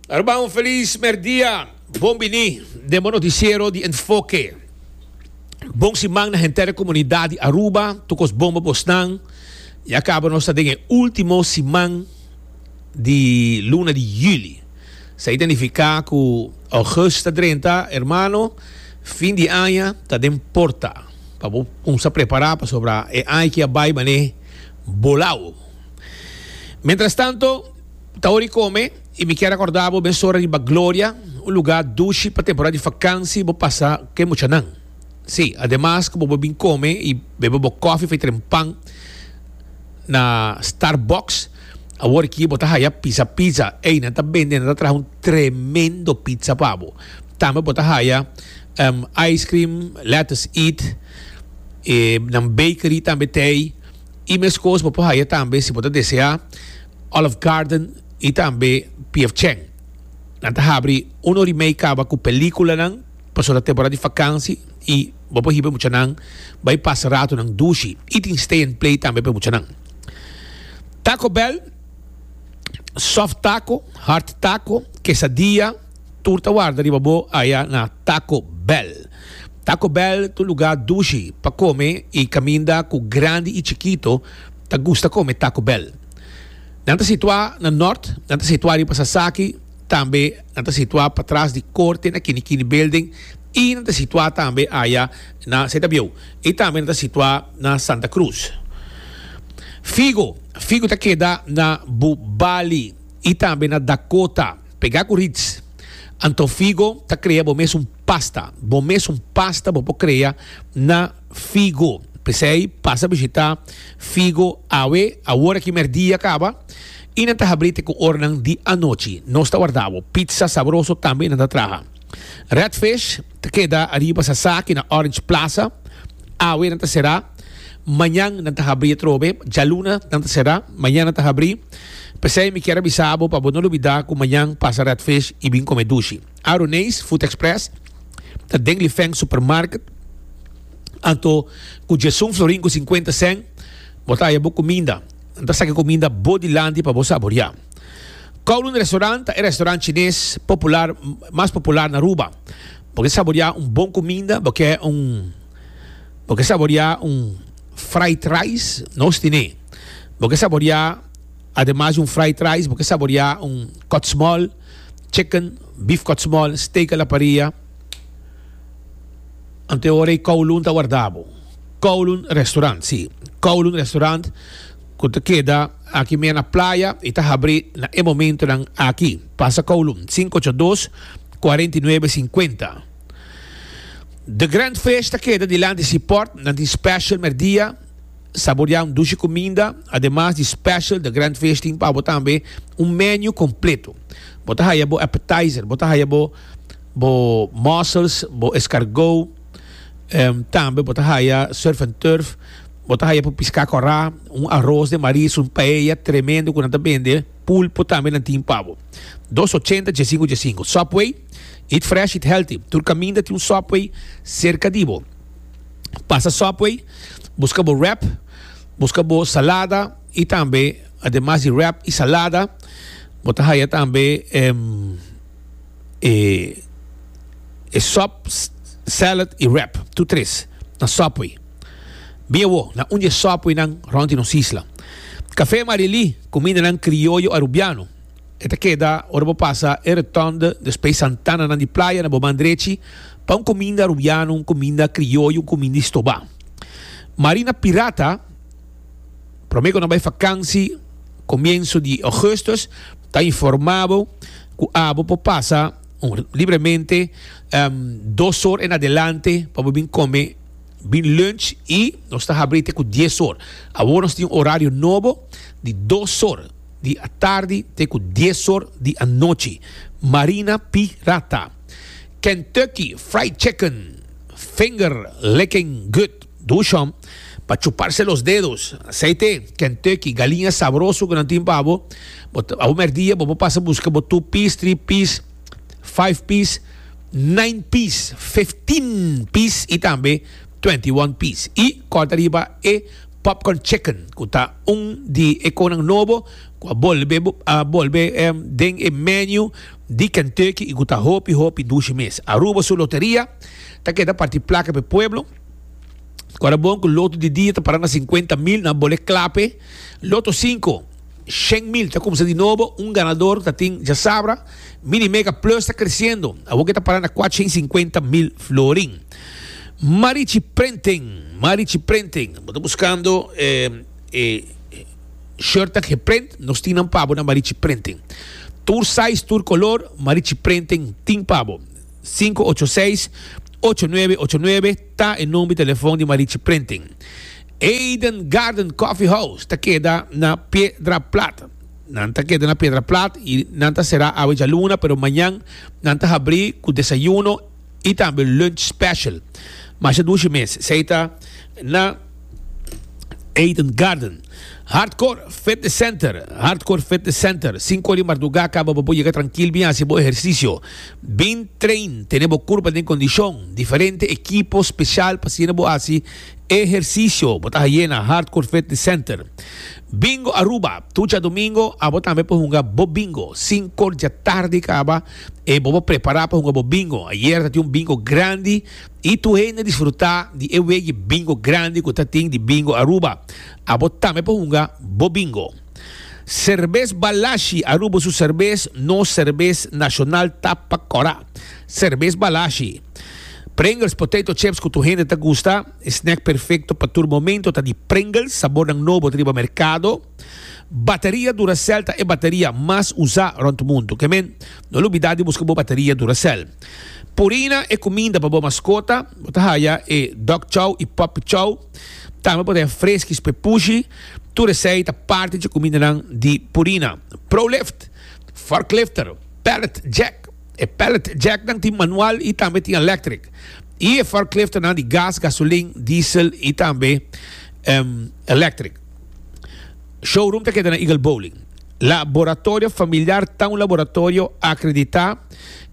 Aruba, un feliz merdia. Bon bini den bo noticiero di Enfoke. Bon siman na henter e comunidad di Aruba, tokos bon bo bosnan. Ya cabo nos ta den e ultimo siman di luna di juli. Sa y ta nifica cu august ta drenta, hermano, fin di aña ta den porta. Pa bo cuminsa prepara pasobra e aña ki a bay bane bolao. Mientras tanto, ta hora di come y mi kier acorda bo mes ora riba Gloria, un lugar dushi pa temporada di vakansi bo pasa cu e muchanan. Sí, ademas cu bo bo bin come y bebe bo coffee of e tren pan na Starbucks, awor aki bo ta haya Pizza Pizza. Ey, nan ta bende, nan ta traha un tremendo pizza pa bo. Tambe bo ta haya em ice cream, lettuce eat, e nan bakery tambe t'ey. E mescos bo por haya tambe si bo ta desea Olive Garden y tambe PF Chang. Nan ta habri uno ori mei caba cu peliculanan pasobra ta temporada di vakantie y bo por hiba e muchanan bay pasa ratonan dushi y tin stay and play tambe pa e muchanan. Taco Bell, soft taco, hard taco, quesadilla. Tur ta warda riba bo aya na Taco Bell. Taco Bell ta un lugá dushi pa kome i kaminda ku grandi i chikito ta gusta kome Taco Bell. Nan ta situá na nòrt, nan ta situá riba Sasaki, tambe nan ta situá patras di korte na Kini Kini Building i nan ta situá tambe aya na Setabieu i tambe nan ta situá na Santa Cruz. Figo, Figo ta keda na Bubali i tambe na Dakota. Pega cu Ritz. Anto Figo ta crea bo mes un pasta. Bo mes un pasta bo por crea na Figo. P'esey pasa bishita Figo awe, awor aki merdia caba, y nan ta habri te cu ornan di anochi. Nos ta warda bo. Pizza sabroso tambe nan ta traha. Red Fish ta keda ariba sa saki na Orange Plaza. Awe nan ta será. Mañan nan ta habrí atrobe. Djaluna nan ta será. Mañan nan ta habrí. P'esei mi kier a bisa bo pa bo no lubidá ku mañan pasa Red Fish i bin kome dushi. Aroneis Food Express ta den Lifeng Supermarket. Anto ku Djesun Florin ku sinkuenta sèn bo ta haya bo kuminda. Nan ta saki kuminda bo di lanti pa bo saboriá. Kowloon Restaurant ta e restaurant chines popular mas popular na Aruba. Bo ke saboreá un bon kuminda, bo ke un bo ke saboreá un fried rice, nos tine. Bo ke saboreá ademas di un fried rice, bo ke saboreá un kòtsmòl chicken, beef kòtsmòl, steak a la parrilla. Anto e ora ei Kowloon ta wardá bo. Kowloon Restaurant, sí, Kowloon Restaurant ku ta keda aki mea na playa i ta habrí na e momentunan aki. Pasa Kowloon sinku ocho dos, kuarenta i nuebe sinkuenta. The Grand Fish ta keda dilanti si pòrt, nan tin spèshal mèrdia, saboriá un dushi kuminda. Ademas di spèshal, The Grand Fish tin pa bo tambe un mènù kompletu. Bo ta haya bo appetizer, bo ta haya bo bo mussels, bo eskargou, tambe bo ta haya surf and turf. Bo ta haya por piská kòrá, un aros den maris, un paella tremendo ku nan ta bende, pulpo tambe nan tin pa bo. Dos ochenta djesinku djesinku. Subway, Eat fresh, eat healthy. Tur kaminda tin un Subway serka di bo. Pasa Subway, buska bo wrap, buska bo salada i tambe ademas di wrap i salada bo ta haya tambe e e sòp, salad i wrap. Tur tres na Subway. Bia wo, na un dje sòpui nan rònt di nos isla. Kafé Marilí, kumindanan krioyo arubiano. E ta keda ora bo pasa e Rotonde despey Santana nan di playa na bo man drechi pa un kuminda arubiano, un kuminda krioyo, un kuminda di stobá. Marina Pirata, promé ku nan bai fakansi komienso di Augustus, ta informá bo ku abo por pasa libremente dos or en adelante pa bo bin kome. bin lunch y nos ta habri te ku dies or. Awor nos tin un horario nobo di dos or di atardi te ku dies or di anochi. Marina Pirata. Kentucky Fried Chicken, finger licking good. Dushon, pa chuparse los dedos. Asei te, Kentucky, galiña sabroso ku nan tin pa bo. Bo ta, awor merdia bo por pasa buska bo two piece, three piece. 5 pies, 9 pies, 15 pies y tambe 21 pies. Y corta riba e popcorn chicken cu ta un di e conan nobo cu a bolbe a bolbe den e menu di Kentucky y cu ta hopi hopi dushi mes. Aruba su loteria ta keda parti placa p'e pueblo. Cora bon cu loto di dia ta para na cincuenta mil nan bole clape loto cinco. Shen mil ta kumsa di nobo, un ganador ta tin djasabra. Mini Mega Plus ta kresiendo, awor ke ta para na kuatsha i sinkuenta mil florin. Marichi Printing, Marichi Printing, bo ta buskando e shirtnan geprint, nos tin nan pa bo na Marichi Printing. Tur size, tur kolor, Marichi Printing tin pa bo. Sinku ocho seis, ocho nuebe ocho nuebe ta e nomber di telefòn di Marichi Printing. Eden Garden Coffee House ta keda na Piedra Plat. Nan ta keda na Piedra Plat y nan ta sera awe djaluna pero mañan nan ta habri cu desayuno y tambe lunch special. Masha dushi mes esey ta na Eden Garden. Hardcore Fitness Center Hardcore Fitness Center, sinku ora di marduga caba pa bo yega trankil bin haci bo ehercicio. Bin train, tene bo curpa den condicion, diferente ekipo special pa asina bo haci. Ehersisio, Bo ta hayé na Hardcore Fitness Center. Bingo Aruba, Tur dja domingo abo tambe por hunga bo bingo. Sinko dja tardi kaba e bo por prepará pa hunga bo bingo. Ayer ta tin un bingo grandi i tur hende disfrutá di e wegi bingo grandi ku ta tin di Bingo Aruba. Abo tambe por hunga bo bingo. Serbes Balashi, Aruba su serbes, nos serbes nashonal ta pa kòrá. Serbes Balashi. Pringles potato chips cu tur hende ta gusta. E snack perfecto pa tur momento ta di Pringles, sabornan nobo ta riba mercado. Bateria Duracell ta e bateria mas usa rond mundo. Kemen, no lubida di busca bo bateria Duracell. Purina e cuminda pa bo mascota. Bo ta haya e Dog Chow y Puppy Chow. Tambe bo ta haya Friskies p'e pushi. Tur esey ta parti dje cumindanan di Purina. Prolift, Forklifter, Pallet Jack. E pallet jacknan tin manual y tambe tin electric. Y e forkliftnan di gas, gasolin, diesel y tambe em, electric. Showroom ta keda na Eagle Bowling. Laboratorio familiar ta un laboratorio acredita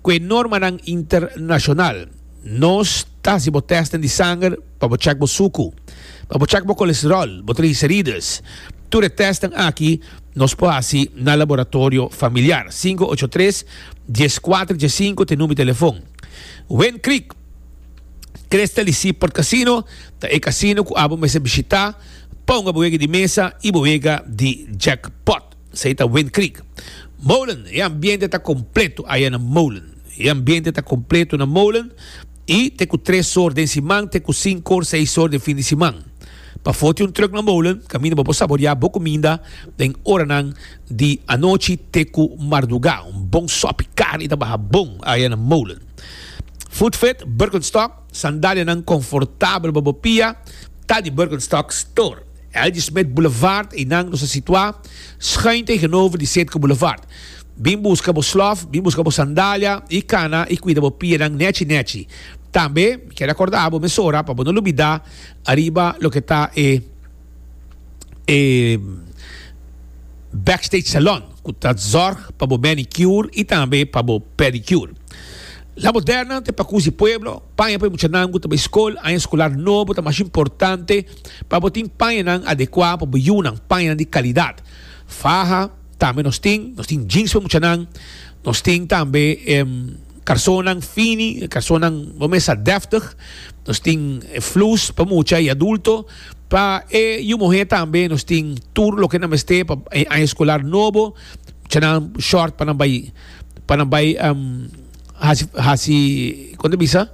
cu e normanan internacional. Nos ta haci bo testen di sanger pa bo check bo sucu, pa bo check bo colesterol, bo triglicerides. Tur e testnan aki. Nos por hasi na laboratorio familiar. Cinco ocho tres, dies cuatro, dies cinco ta e number di telefon. Wind Creek Crystal y Seaport Casino ta e casino cu abo mester bishita pa hunga bo wega di mesa y bo wega di jackpot. Esey ta Wind Creek. Molen, e ambiente ta completo aya na Molen. E ambiente ta completo na Molen. I te ku tres or den siman te ku sinku or seis or den fin di siman. Pafó tin un trùk na molen kaminda bo por saboriá bo kuminda den oranan di anochi te ku mardugá. Un bon sòpi karni ta baha bon aya na molen. Footfit, Birkenstock, sandalianan konfortabel pa bo pia ta di Birkenstock Store, Algie Smith Boulevard, einan nos a situá, schuin tegenover di Setco Boulevard. Bin buska bo slòf, bin buska bo sandalia i kana i kuida bo pienan nèchi nèchi. Tambe mi kere akòrdá bo mesora pa bo no lubidá ariba loke ta e e backstage salon ku ta zòrg pa bo manicure i tambe pa bo pedicure. La Moderna ta e pakus di pueblo, paña pa e muchanan ku ta bai skol, aña skolar nobo ta mas importante pa bo tin pañanan adekuá pa bo yunan, pañanan di kalidat. Faha. Tambe nos tin, nos tin jeans pa muchanan, nos tin tambe e karsonan fini, e karsonan bo mesa dèftig, nos tin e flus pa mucha i adulto. Pa e yu muhé tambe nos tin tur loke nan mester pa e aña skolar nobo, muchanan short pa nan bai pa nan bai hasi hasi kon ta bisa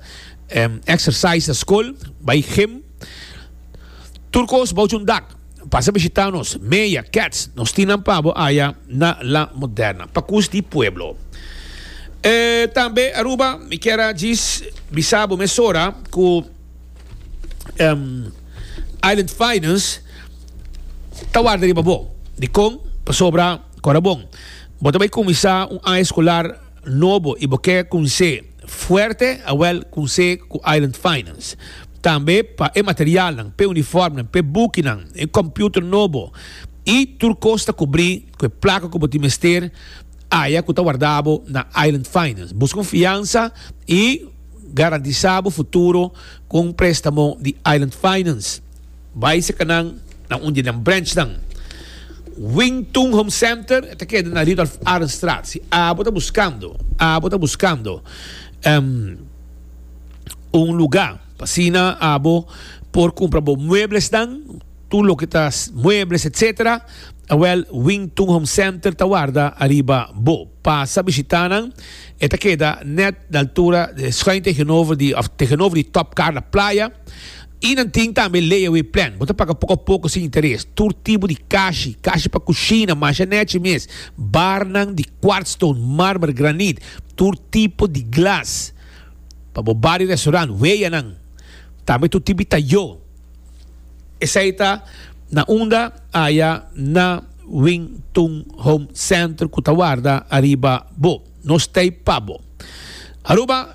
èksersais na skol, bai gim, tur kos bouch un dak. Pasa bishita nos, Meya, Cats, nos tin nan pa bo aya na La Moderna, pa cus di pueblo. E tambe Aruba, mi kier a djis bisa bo mesora cu um, Island Finance ta warda riba bo. Dicon? Pasobra, cora bon, bo ta bay cuminsa un aña escolar, Nobo y bo kier kunse fuerte awel kunse ku Island Finance tambe pa e materialnan, p'e uniformnan, p'e bukinan, e computer nobo y tur kos ta kubrí ku e plaka ku bo tin mester aya ku ta warda bo na Island Finance. Buska un fiansa y garantisa bo futuro ku un prestamo di Island Finance. Bai seka nan na un di nan branchnan. Wing Tun Home Center ta keda na Rudolf Arendstraat. Si abo ta buskando, abo ta buskando un lugá pa asina abo por kumpra bo mueblesnan, tur loke ta muebles etsetera, awèl Wing Tun Home Center ta warda ariba bo. Pasa bishitá nan, e ta keda nèt na altura, schuin tegenover di òf tegenover di Top Carla Playa. I nan tin tambe layaway plan, bo ta paga poko a poko sin interes, tur tipo di kashi, kashi pa kushina, masha nechi mes, barnan di kwartstone, marmer, granit, tur tipo di glas pa bo bar i restaurant, weyanan, tambe tur tipo di tayó. Esei ta na unda aya na Wing Tun Home Center ku ta warda ariba bo. Nos t'ei pa bo. Aruba.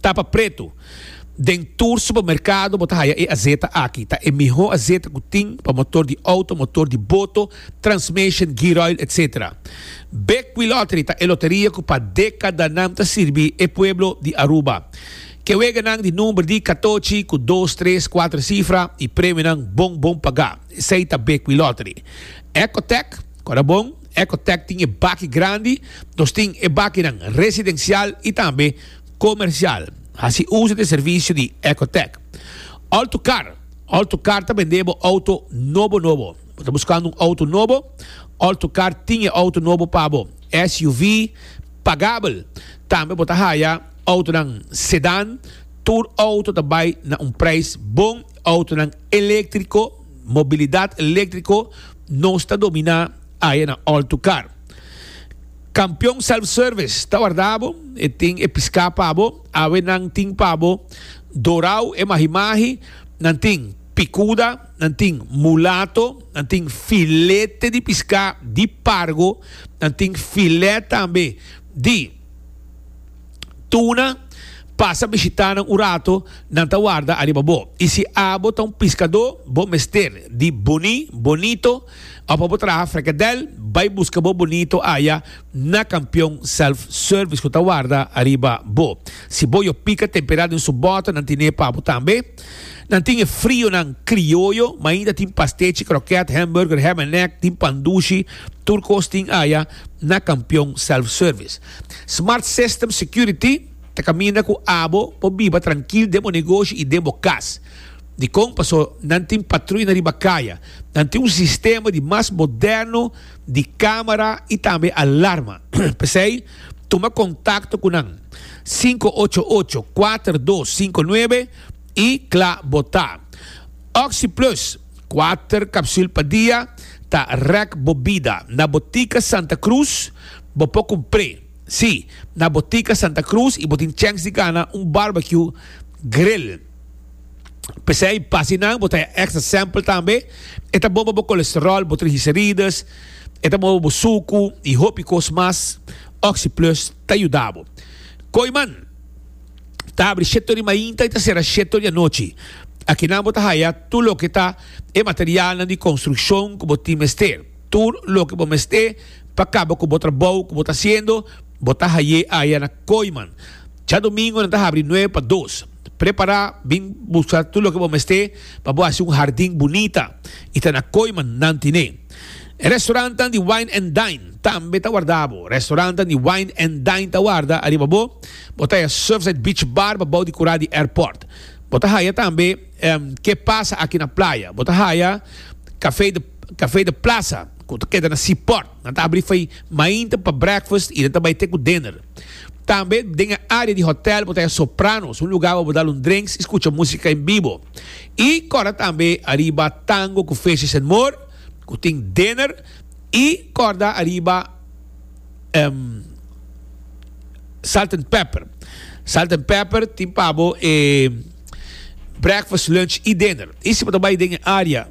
ta pa pretu. Den tur supermerkado bo ta haya e azeta aki. Ta e mihó azeta ku tin pa motor di outo, motor di boto, transmation, gearoil etc. Bekwí Lottery ta e loteria ku pa dekadanan ta sirbi e pueblo di Aruba. Ke weganan di number di katochi ku dos, tres, kuater sifra i premionan bon bon pagá. Esei ta Bekwí Lottery. Ecotec, kòrda bon. Ecotech tin e baki grandi, nos tin e bakinan residencial y tambe comercial. Haci uzo di e servicio di Ecotech Autocar. Autocar ta bende bo auto nobo nobo. Bo ta buscando un auto nobo? Autocar tin e auto nobo pa bo, SUV pagabel. Tambe bo ta haya autonan sedan. Tur auto ta bay na un prijs bon. Autonan electrico. Mobilidad electrico nos ta domina aye na Alto Car. Campeon Self Service ta warda bo, e tin e pisca pa bo, awe nan tin pa bo Dorao e mahi mahi, nan tin picuda, nan tin mulato, nan tin filete di pisca di pargo, nan tin filet tambe di. Tuna, pasa bishitá nan un rato, nan ta warda ariba bo. I si abo ta un piskadó, bo mester di buní, bonito, òf abo traha frekadèl, bai buska bo bonito aya na kampion self-service ku ta warda ariba bo. Si bo yo pika temperá den su bòter, nan tine pa bo tambe. Nan tin e frionan krioyo, ma ainda tin pastechi, krokèt, hèmburger, hèm en nèk, tin pandushi, tur kos tin aya na kampion self-service. Smart System Security ta kaminda ku abo por biba trankil den bo negoshi i den bo kas. Dikon? Paso nan tin patruina riba kaya. Nan tin un sistema di mas moderno di kamera i tambe alarma. P'esei, tuma kontakto ku nan sinku ocho ocho kuater dos sinku nuebe i kla bo ta. Oxi Plus, kuater kapsul pa dia, ta rèk bo bida. Na Botika Santa Krus. Bo por cumpré, sí, na Botica Santa Cruz y bo tin chèns di gana un barbecue grill. P'esei, pa asinan bo ta e extra sample tambe, e ta bon pa bo colesterol, bo triglicerides, e ta bon pa bo sucu y hopi cos mas. OxyPlus ta yuda bo. Kooiman ta abri shete ori mainta y ta cera shete ori anochi. Akinan bo ta haya tur loke ta e materialnan di construccion cu bo tin mester, tur loke bo mester. Pa kaba ku bo trabou ku bo ta hasiendo, bo ta haié aya na Kooiman. Cha domingo nan ta habri nueve pa dos. Prepará, bin buska tur loke bo mester pa bo hasi un hardin bunita, i ta na Kooiman nan tin'é. E restorantan di Wine and Dine tambe ta warda bo. Restorantan di Wine and Dine ta warda ariba bo. Bo ta haya Surfside Beach Bar pa bou di kura di airport. Bo ta haya tambe Ke Pasa Aki na Playa. Bo ta haya Café de Café de Plaza. Cu ta keda na si port. Nan ta abri fai mainta pa breakfast y nan ta bai te cu dinner. Tambe den e area di hotel bo ta haya Sopranos, un lugar wor bo dal un drinks y scucha musica en bibo. Y corda tambe ariba Tango cu Fishes and More cu tin dinner y corda ariba Salt and Pepper. Salt and Pepper tin pa bo e breakfast, lunch y dinner. Y si bo ta bai den e area.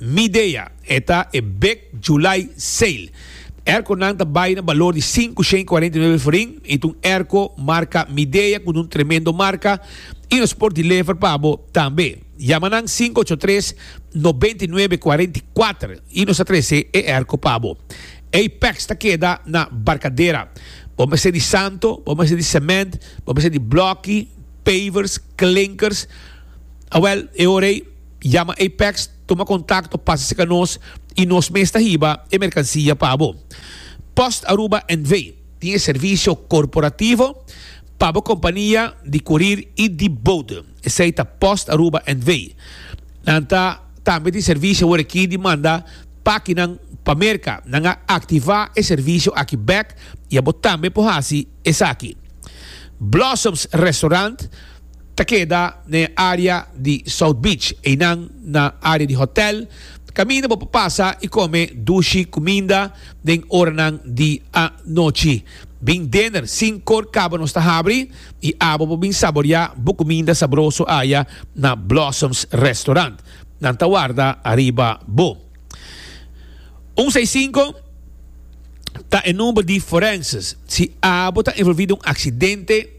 Mi dea e ta e Big July Sale. Erconan ta bay na balor di sinku shen cuarenta i nuebe forin y ta un erco marca Midea cu dun tremendo marca y nos por deliver pa bo tambe. Yama nan sinku ocho tres, noventa i nuebe, cuarenta i kuater y nos ta trece e erco pa bo. Apex ta keda na Barcadera. Bo mester di santo, bo mester di cement, bo mester di bloki, pavers, klinkers. Awel, e ora ey. Yama Apex tuma kontakto pasa seka nos y nos mes ta hiba e merkansia pa bo. Post Aruba NV. tin e servisio korporativo pa bo kompania di kurir y di boot, esei ta Post Aruba NV. Nan ta tambe tin servisio wor aki di manda pakinan pa Merka. Nan a aktiva e servisio aki bek y abo tambe por hasi esaki. Blossoms Restaurant. ta keda na e área di South Beach, einan na área di hotèl. Kaminda bo por pasa i kome dushi kuminda den oranan di anochi. Bin Dinner sin kor kaba nos ta habri i abo bo bin saboriá bo kuminda sabroso aya na Blossoms Restaurant. Nan ta warda ariba bo. Un seis sinku ta e number di Forenses si abo ta envolví den un aksidente.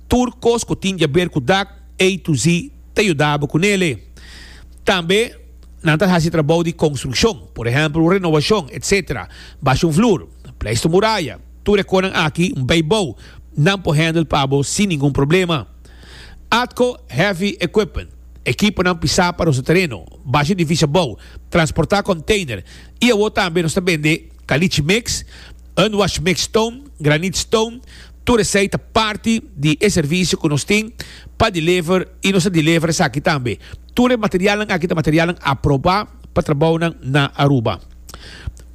Tur kos ku tin keber ku dak A to Z ta yudabo ku nele. Tambe nan ta hasi trabou di konstrukshon, por ehèmpel renowashon, etc. Basha un flur, pleista un muraya, tur e konan aki bai bou, nan por hèndel pa bo sin ningun problema. Atco Heavy Equipment, Ekiponan pisá pa nos ta tereno, basha edifisha bou, transportá konteiner, i awor tambe nos ta bende kalichi mix, unwashed mixed stone, granite stone, Tur esei ta parti di e servisio ku nos tin pa deliver i nos ta deliver esaki tambe. Tur e materialnan aki ta materialnan aprobá pa trabounan na Aruba.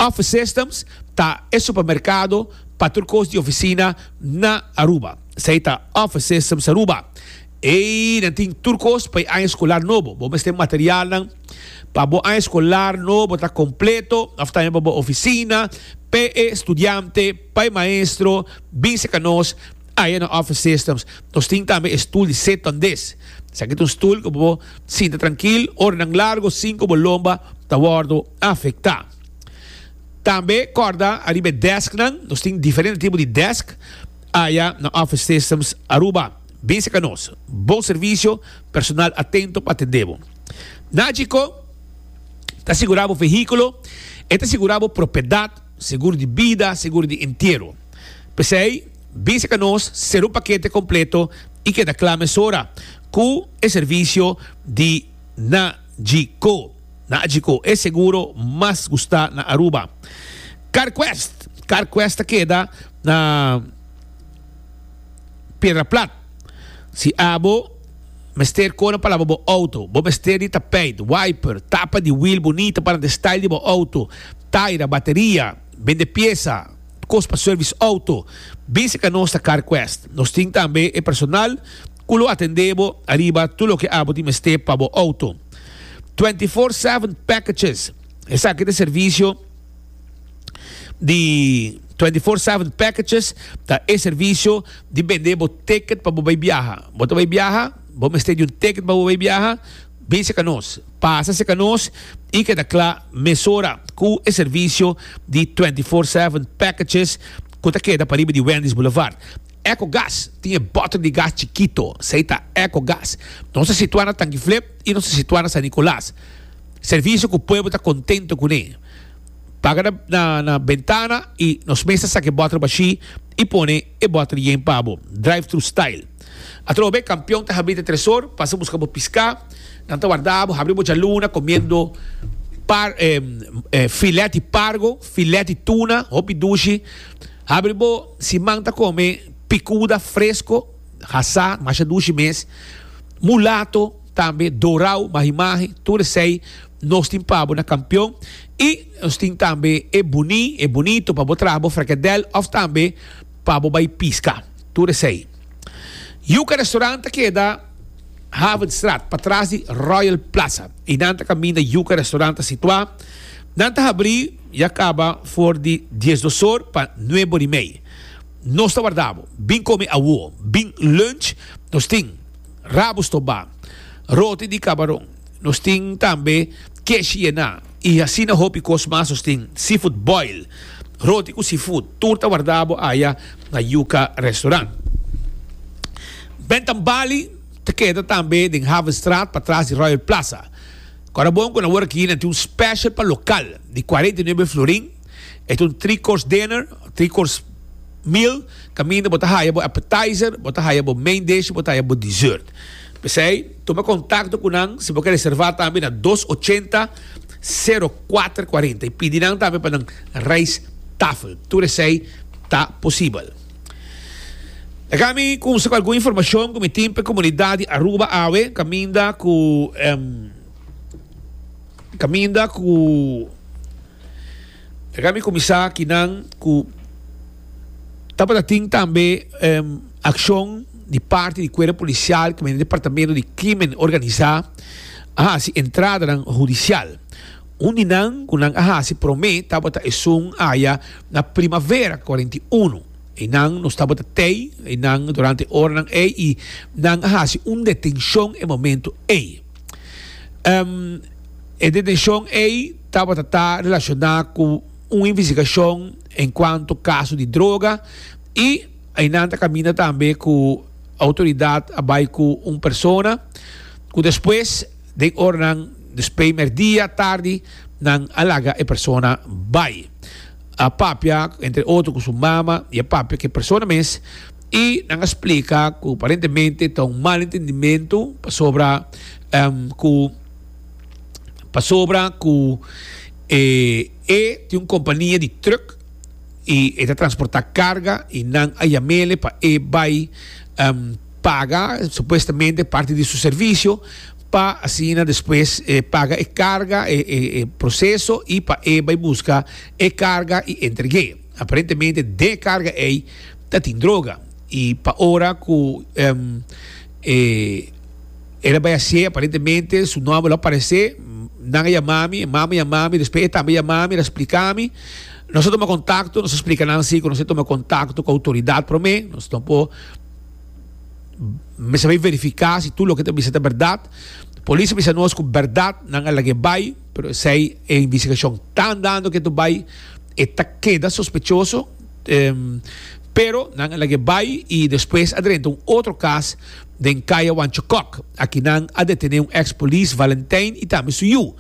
Office Systems ta e supermerkado pa tur kos di ofisina na Aruba. Esei ta Office Systems Aruba. Ey, nan tin tur cos pa e aña escolar nobo. Bo mester materialnan pa bo aña escolar nobo ta completo, of tambe pa bo oficina, p'e studiante, pa e maestro, bin seca nos aya na Office Systems. Nos tin tambe e stoel di sit-on desk. Esaki ta un stoel cu bo sinta trankil oranan largo sin cu bo lomba ta wordo afecta. Tambe corda ariba e desknan, nos tin diferente tipo di desk aya na Office Systems Aruba. Bisa ka nos. Bon servisio, personal atento pa atendé bo. Nagico ta sigurá bo vehíkulo, e ta sigurá bo propiedat, seguro di bida, seguro di entiero. P'esei, bisa ka nos, ser un pakete kompleto i keda kla mesora ku e servisio di Nagico. Nagico, e seguro mas gustá na Aruba. Carquest. Carquest ta keda na. piedra plat. Si abo mester kore palabra bo auto, bo mester di tapijt, wiper, tapa di wiel bunita para den style di bo auto, taira, bateria, bende piesa, kos pa service auto. Bisa ka nos ta CarQuest. Nos tin tambe e personal ku lo atende bo ariba tur loke abo tin mester pa bo auto. Twenty four seven packages, esaki ta e servicio. di 24/7 packages ta e servicio di bende bo ticket pa bo bay biaha. Bo ta bay biaha, bo mester di un ticket pa bo bay biaha, bin seka nos, pasa seka nos y keda kla mesora cu e servicio di 24/7 packages cu ta keda pariba di Wendy's Boulevard. Ecogas tin e boter di gas chikito, esey ta Ecogas. Nos ta situa na Tangi Flip y nos ta situa na San Nicolas. Servicio cu pueblo ta contento cune. Paga na bentana y nos mes ta saca e bottle bashi y pone e bottle yen pa bo, drive thru style. Atroba be campeon ta habri te tresor, pasa busca bo pisca, nan ta warda bo, habri bo djaluna comiendo par filet di pargo, filet di tuna, hopi dushi, habri bo si man ta come picuda fresco, hasa, masha dushi mes, mulato tambe, dorao, mahi mahi, tur esey. Nos tin pa bo na Kampion i nos tin tambe e buní, e bunito pa bo traha bo frekedèl òf tambe pa bo bai piska. Tur esei. Yuka Restaurant ta keda Havenstraat pa tras di Royal Plaza i nan ta kaminda Yuka Restaurant ta situá. Nan ta habrí ya kaba for di dies dos or pa nuebe or i mei. Nos ta warda bo. Bin kome awo. Bin lunch nos tin, Rabus tobá, roti di kabaron. Nos tin tambe kesh yená i asina hopi kos mas. Nos tin seafood boil, roti ku seafood, tur ta wardá bo aya na Yuka Restaurant. Bentham Bali ta keda tambe den Havenstraat patras di Royal Plaza. Korabon ku nan wòrdu aki nan tin un special pa lokal di kuarenta i nuebe florin. E ta un three course dinner, three course meal, kaminda bo ta haya bo appetizer, bo ta haya bo main dish i bo ta haya bo dessert. P'esei. Tuma kontakto ku nan si bo ke reservá tambe na dos ochenta, sero kuater kuarenta i pidi nan tambe pa nan reis tafel. Tur esei ta posibel. Laga mi kumsa ku algun informashon ku mi tin pa e komunidat di Aruba awe kaminda ku kaminda ku E ka mi kuminsá aki nan ku tabata tin tambe akshon di parti di kuerpo polisial ku men departamento di krimen organisá a hasi entradanan hudisial. Un di nan ku nan a hasi promé tabata esun aya na Primavera kuarenta i unu. Einan nos tabata tei einan durante e oranan ei i nan a hasi un detenshon e momentu ei. E detenshon ei. tabata ta relashoná ku un investigashon enkuanto kaso di droga i einan ta kaminda tambe ku outoridat a bai ku un persona ku despues den oranan despei mèrdia tardi nan a laga e persona bai. A papia entre otro ku su mama i a papia ku e persona mes i nan a splika ku aparentemente ta un malentendimentu pasobra ku Pasobra cu e e tin un compania di truck y e ta transporta carga y nan a yamele pa e bay paga supuestamente parti di su servicio pa asina despues paga e carga e proceso y pa e bay busca e carga y entregue. Aparentemente den e carga ey ta tin droga y pa ora cu e. El a bai hasié, aparentemente su nòmber lo aparesé, nan a yama mi, e mama yama mi, despues e tata a yama mi, el a splika mi, nos a tuma kontakto, nos a splika nan si ku nos a tuma kontakto ku outoridat promé, nos lo por mester bai verifiká si tur loke ta bisa ta bèrdat, polis a bisa nos ku bèrdat nan a lag'é bai, pero esei e investigashon ta andando ke tur bai, e ta keda sospechoso, pero nan a lag'é bai i despues a drenta un otro kas. Den Kaya Wanchokok, aki nan a detené un ex polis Valentijn y tambe su yu.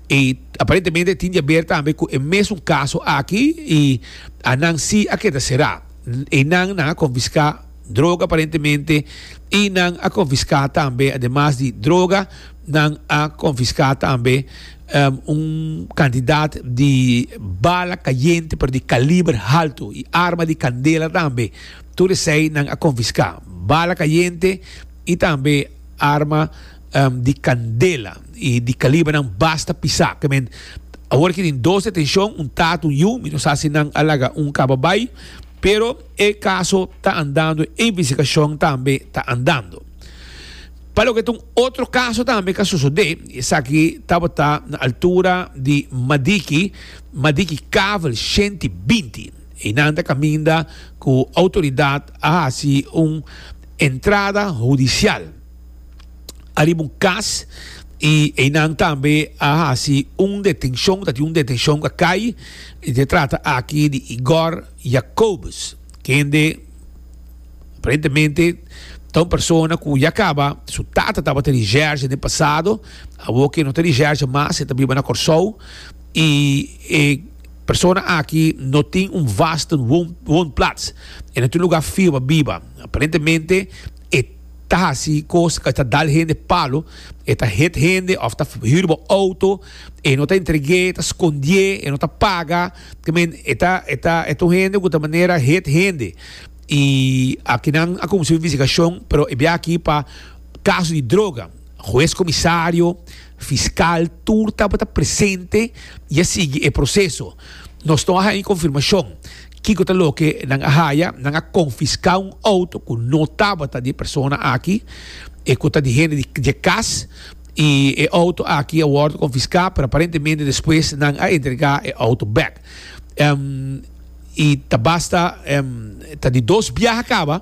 E aparentemente tin diaber tambe cu e mesun caso aki y a nan si a keda será. E nan nan a confisca droga aparentemente y nan a confisca tambe ademas di droga nan a confisca tambe un cantidad di bala cayente pero di caliber halto y arma di candela tambe. Tur esei nan a konfiská bala kayente i tambe arma di kandela i di kalibernan basta pisá. Kemen awor ki tin dos detenshon, un tata, un yu. Mi no sa si nan a laga un kaba bai, pero e kaso ta andando, e investigashon tambe ta andando. Pa loke ta un otro kaso tambe ka sosodé, i esaki tabata na altura di Madiki, Madiki Kavel, shenti binti. I nan ta caminda cu autoridad a haci un entrada hudicial ariba un cas y eynan tambe a haci un detencion, ta tin un detencion ca cay y ta trata aki di Igor Jacobus kende aparentemente ta un persona cu ya caba, su tata tabata di Jersey den pasado, awo ke no ta di Jersey mas, e ta biba na Corsou y e. Persona aki no tin un vaste woonplats en e tur lugar firme biba. Aparentemente e ta haci cos ca ta dal hende palo, e ta hit hende of ta huur bo auto, e no ta entregue, ta scondie, e no ta paga, I mean e ta e ta e ta un hende cu ta manera hit hende. Y aki nan a cuminsa un investigacion pero e bia aki pa caso di droga. Hues comisario. Fiscal tur tabata presente y a sigui e proceso. Nos no a haya confirmacion kico ta loke nan a haya. Nan a confisca un auto cu no tabata di e persona aki, e cu ta di hende di dje cas, y e auto aki a wordo confisca, pero aparentemente despues nan a entrega e auto back. Y ta basta ta di dos biaha caba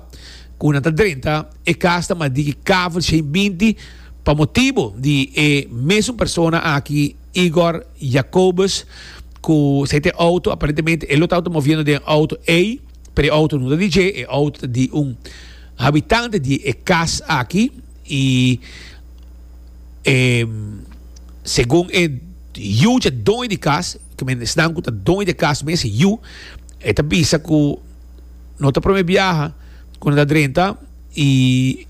cu nan ta drenta. E kas ta mas di ki kavel shei binti pa motibu di e mesun persona aki, Igor Jacobus, ku sa e ta e outo. Aparentemente e lo tabata moviendo den e outo ei, pero e outo no ta di dje. E outo ta di un habitante di e kas aki. I e segun e yu dje doño di kas, ku men esnan ku ta doño di e kas mes, e yu, e ta bisa ku no ta prome biaha. Cu nan ta drenta y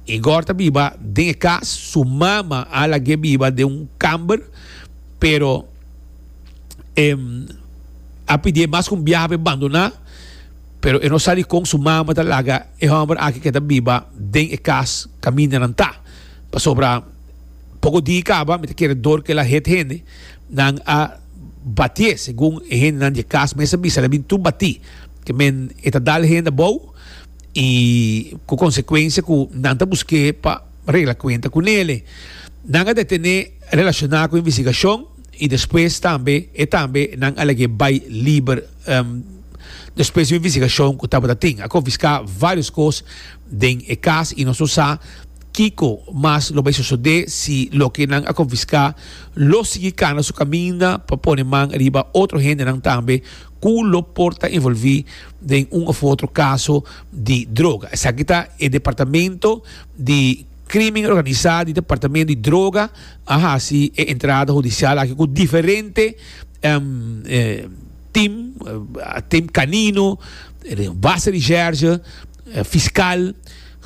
Igor ta biba den e cas, su mama a lag'e biba den un camber, pero e a pidi'e mas cu un biaha p'e bandona, pero e no sa dicon su mama ta laga e homber aki cu e ta biba den e cas caminda nan ta, pasobra poco di caba mi ta kere dor cu el a hit hende. Nan a batié segun e hendenan di e kas mes a bisa, nan a bin tur batí. Ke men e ta dal hende abou i ku konsekuensia ku nan ta busk'é pa regla kuenta ku Nele. Nan a detené relashoná ku investigashon i despues tambe e tambe nan a lag'é bai liber despues di un investigashon ku tabata tin. A konfiská vários kos den e kas i nos lo sa. Kiko mas lo bay sosode si loke nan a konfiská lo sigui kana su kaminda pa pone man riba otro hendenan tambe ku lo por ta envolví den un òf otro kaso di droga? Esaki ta e Departamento di Krímen Organisá di Departamento di Droga a hasi e entrada hudisial aki ku diferente tim, tim kanino, base di sherge, fiskal.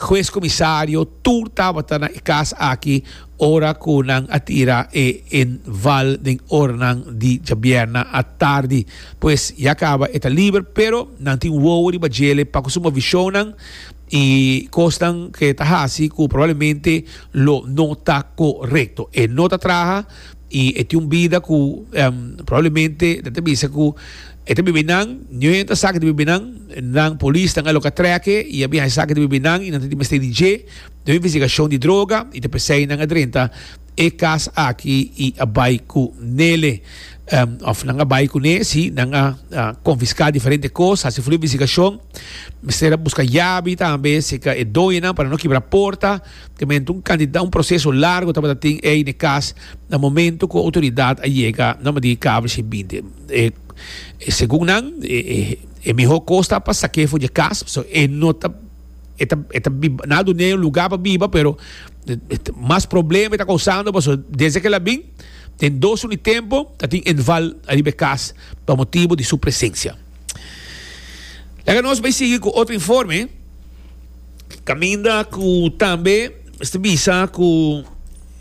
Hues comisario, tur tabata na e cas aki ora cu nan a tira e inval den oranan di djabierna atardi. Pues ya caba e ta liber, pero nan tin wowo riba djele pa cu su movicionnan y cosnan cu e ta haci cu probablemente lo no ta corecto. E no ta traha. I e tin un bida ku probablemente nan ta bisa ku e ta bibi nan, niu e ta sa ke ta bibi nan, nan polis nan a loka trèk e i a biaha e sa ke ta bibi nan i nan ta di mester di dje na un investigashon di droga i ta p'esei nan a drenta e kas aki i a bai ku nele òf nan a bai kuné si nan a konfiská diferente kos, hasi flu investigashon, mester a buska yabi tambe serka e doñonan pa nan no kibra porta. Temente un cantidad, un proceso largo tabata tin ey n'e cas na momento cu autoridad a yega na madi cable shi bindi. E, e segun nan, e, e, e miho cos ta pa saque fu dje cas, so e no ta, e ta, e ta biba, na dun'e un lugar pa biba, pero mas problema e ta causando, paso desde aquel a bin, den dos uni tempo ta tin inval ariba e cas pa motibo di su presencia. Laga nos bay sigui cu otro informe. Caminda cu tambe este bisa cu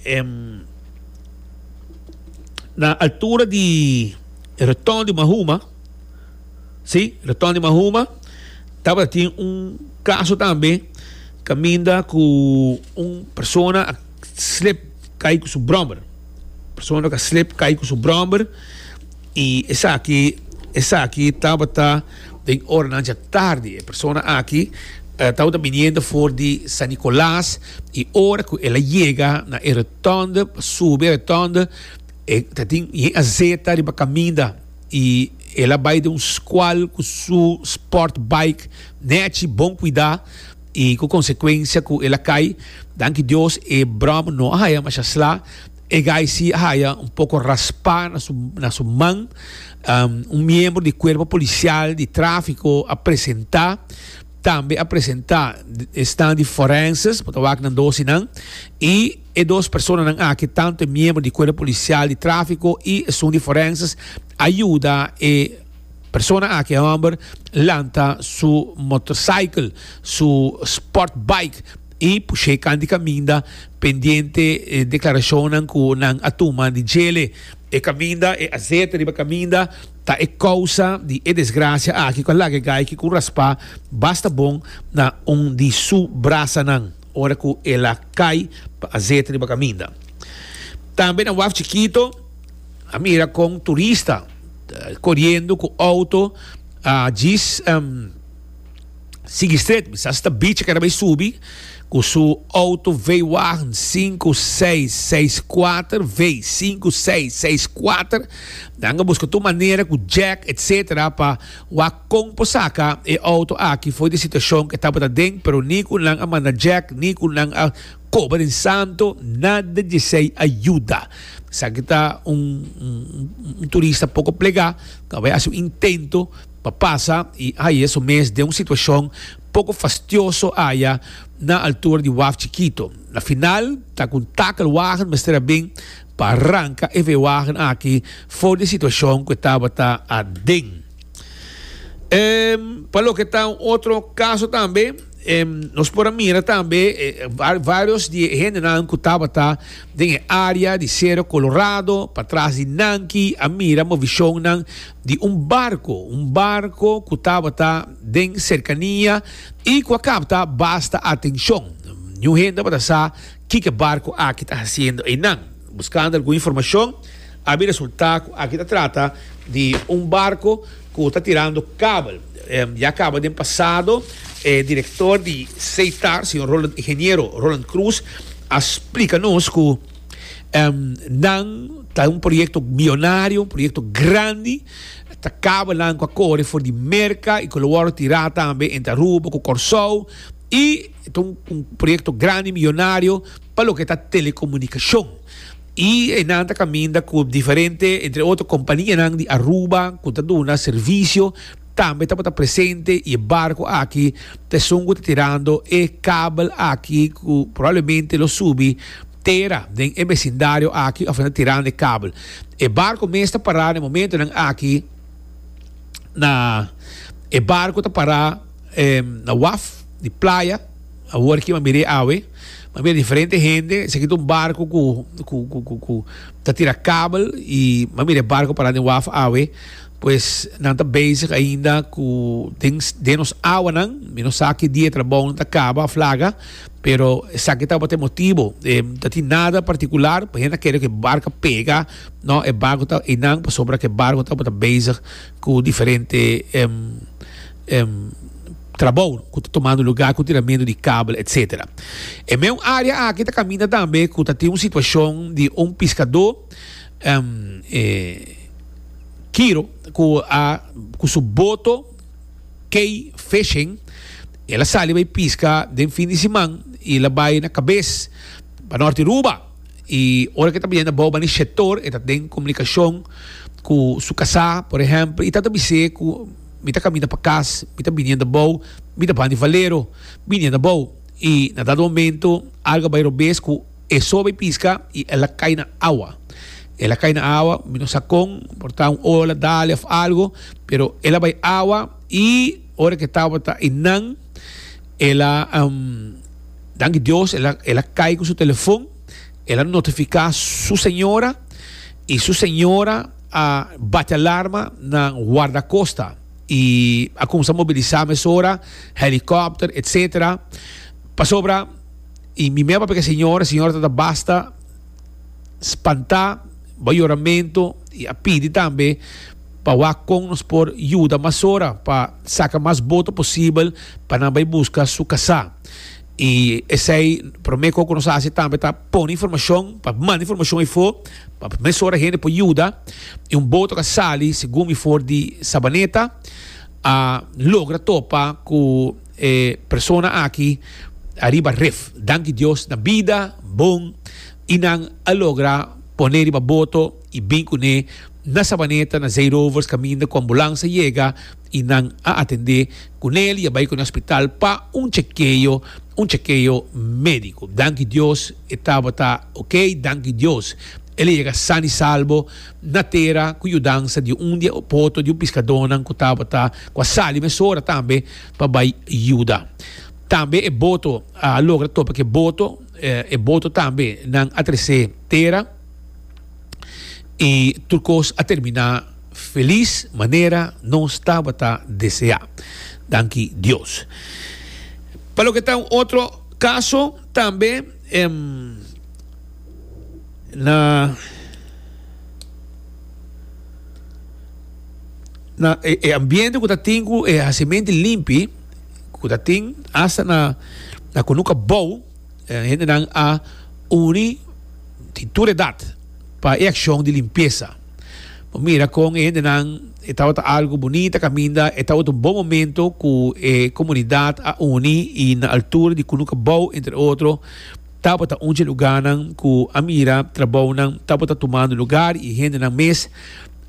em, na altura di retorno di Mahuma, sí, retorno di Mahuma, taba tiene un caso tambe caminda cu un persona a slip cae con su brommer. Persona que slip cae con su brommer. I esaki, esaki tabata den oranan dje tardi. E persona aki tabata biniendo for di San Nicolas, i ora ku el a yega na e rotònde, pa subi e rotònde, e ta tin yen a zeta riba kaminda, i el a bai den un skual ku su sport bike nèchi bon kuidá, i ku konsekuensia ku el a kai. Danki Dios e bròm no a haya masha sla. E gaisi a haya un poko raspa na su na su man. Un miembro di Cuerpo Policial di Tráfico a presentá. Tambe a presentá esnan di forenses pa ta wak nan dosi nan. I e dos personanan aki, tantu e miembro di Cuerpo Policial di Tráfico i esun di forenses, a yuda e persona aki, e hòmber, lanta su motorcycle, su sport bike. y pushe kant di kaminda pendiente e declaracionnan cu nan a tuma di djele. E kaminda, e azete riba kaminda ta e causa di e desgracia aki cu a laga e gaiky cu raspa basta bon na un di su brasanan ora cu el a cay pa azete riba kaminda. Tambe na waf chikito a mira con turista coriendo cu auto a djis. sigui stret, mi sa si ta bichi keda bay subi cu su auto V-Wagen 5664 V 5664, nan a busca tur manera cu jack etc pa wak con por saca e auto aki fo'i di situacion cu e tabata den, pero ni cu nan a manda jack ni cu nan a coba den santo nada djesey a yuda, esaki ta un turista poco plega ta bay haci un intento. Pa pasa i haye su mes den un situashon poko fastioso aya na altura di waf chikito. Na final ta ku un takelwagen mester a bin pa ranka e veewagen aki for di e situashon ku e tabata aden. Pa loke ta un otro kaso tambe, nos por a mira tambe varios di e hendenan ku tabata den e área di Sero Kolorado, patras di Nanki, a mira movicionnan di un barco, un barco cu tabata den cercania y cu a capta basta atencion. Niun hende tabata sa kico barco aki ta haciendo eynan. Buscando algun informacion a bin resulta cu aki ta trata di un barco cu ta tirando kabel. Ya caba den pasado e director di Seitar, señor Roland Ingeniero Roland Croes a splica nos cu. nan ta un proyecto millonario un proyecto grandi ta cabo nan cu a core for di Merca y cu lo wordo tira tambe entre Aruba cu Corsou y ta un proyecto grandi millonario pa loke ta telecomunicacion y nan ta caminda cu diferente entre otro compania nan di Aruba cu ta duna servicio Tambe tabata presente y e barco aki ta esun cu ta tirando e kabel aki cu probablemente lo subi tera den e becindario aki of nan ta tirando e kabel. E barco mes ta para na e momentonan aki na e barco ta para na waf di playa awor ki m'a mir'e awe m'a mira diferente hende esaki ta un barco cu cu cu cu ta tira kabel y m'a mira e barco para den waf awe. Pues nan ta bezig ainda cu den, den nos awanan. Mi no sa ki dia e trabounan ta caba of laga, pero esaki tabata e motibo. E no tin nada particular, por hende a kere cu e barca pega, no, e barco ta einan pasobra cu e barco tabata bezig cu diferente trabou cu ta tomando lugar cu tiramentu di cable, etcetera. E meun area aki ta caminda tambe cu ta tin un situacion di un piscador. Em e Kiro ku a ku su boto key fishing el a sali bai piska den fin di siman i el a bai na kabes banorte Aruba i ora ke ta biaha na bou bani shetor e ta den komunikashon ku su kasá por ehèmpel i ta ta bis'é ku mi ta kaminda pa kas mi ta bini anda bou mi ta ban di Valero bini anda bou i na dado momento algu a bai robes ku E sobi pisca y el a cay na awa. El a cay na awa, mi no sa con, por ta un ola dale of algo, pero el a bay awa y ora que tabata e nan, el a, danki Dios, el a, el a cay cu su telefon, el a notifica su señora y su señora a bati alarma na Guardacosta y a comenzá mobilizá mesora, helicopter, etcetera, pasobra. I mi meba peka señora, señora ta ta basta spantá bo yoramentu i a pidi tambe pa wak kon nos por yuda mas ora pa saka mas boto posibel pa nan bai buska su kasá. I esei promé kon ku nos hasi tambe ta pone informashon, pa manda informashon efo pa mes ora hende por yuda i un boto ka sali segun mi for di Sabaneta a logra topa ku. E persona aki ariba ref. Danki Dios na bida bon y nan a logra pone riba boto y bin cune na Sabaneta na Zeerovers caminda cu ambulansa yega y nan a atende cunel y a bay cune hospital pa un chekeo un chekeo medico danki Dios e tabata ok danki Dios el a yega san y salbo na tera cu yudansa di un di e poto di un piscadonan cu tabata cu a sali mesora tambe pa bai yuda. Tambe e boto a logra topa cu e boto, e boto tambe nan a trece tera y tur cos a termina feliz manera nos tabata desea. Danki Dios. Pa loke ta un otro caso tambe na. na e, e ambiente ku ta tin ku e hasimente limpi ku ta tin hasta na na ku nuka bou eh, hende nan a uni di tur edad pa e akshon di limpiesa. Bo mira kon e hende nan e tabata algo bonita kaminda e tabata un bon momento ku e komunidat a uni i na altura di ku nuka bou entre otro tabata un dje lugarnan ku a mira trabounan tabata tumando lugar i hende nan mes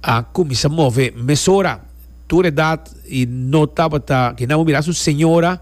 A cuminsa move mesora. Tur edad y no tabata. Kina bo mira su señora.